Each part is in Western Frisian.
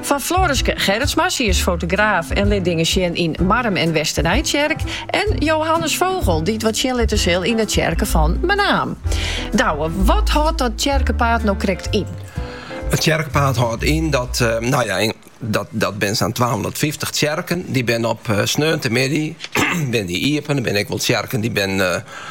Fan Floreske Gerritsma, sy is fotograaf en lit dingen sjen yn Marrum-Westernijtsjerk, en Johannes Vogel, dy't wat sjen litte sil yn 'e tsjerke fan Menaam. Douwe, wat hâldt dat tsjerkepaad no krekt yn? It tsjerkepaad hâldt yn dat, no ja, dat binne sa'n twahûndertfyftich tsjerken. Dy binne op sneontemiddei binne dy iepen. Der binne ek wol tsjerken dy't binne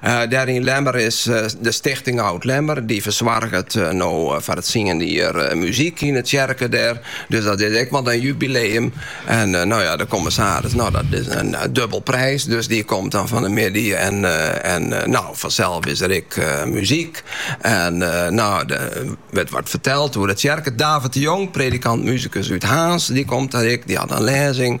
Dêr yn Lemmer is de Stichting Oud Lemmer, dy fersoarget no foar it tsiende jier muzyk yn de tsjerke dêr. Dus dat is ek wat in jubileum. En no ja, de kommissaris, no dat is in dubbel prijs, dus dy komt dan fan de middei en no fansels is der ek muzyk. En no der wurdt wat ferteld oer de tsjerke. David de Jong, predikant-muzikus út Harns, dy komt dêr ek, dy hat in lêzing.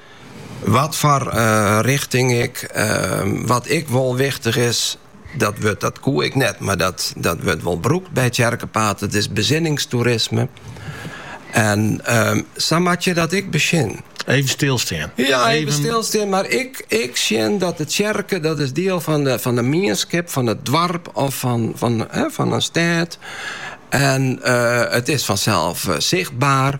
Watfoar richting ek, wat ek wol wichtich is, dat wurd dat koe ik net, mar dat wurdt wol brûkt by Tsjerkepaad, dat is besinningstoerisme. En sa moatte je dat ek besjen. Even stilstean. Ja, even stilstean, mar ek sjen dat de tsjerke, dat is diel fan de mienskip, fan it doarp of fan in stêd. En it is fansels sichtber.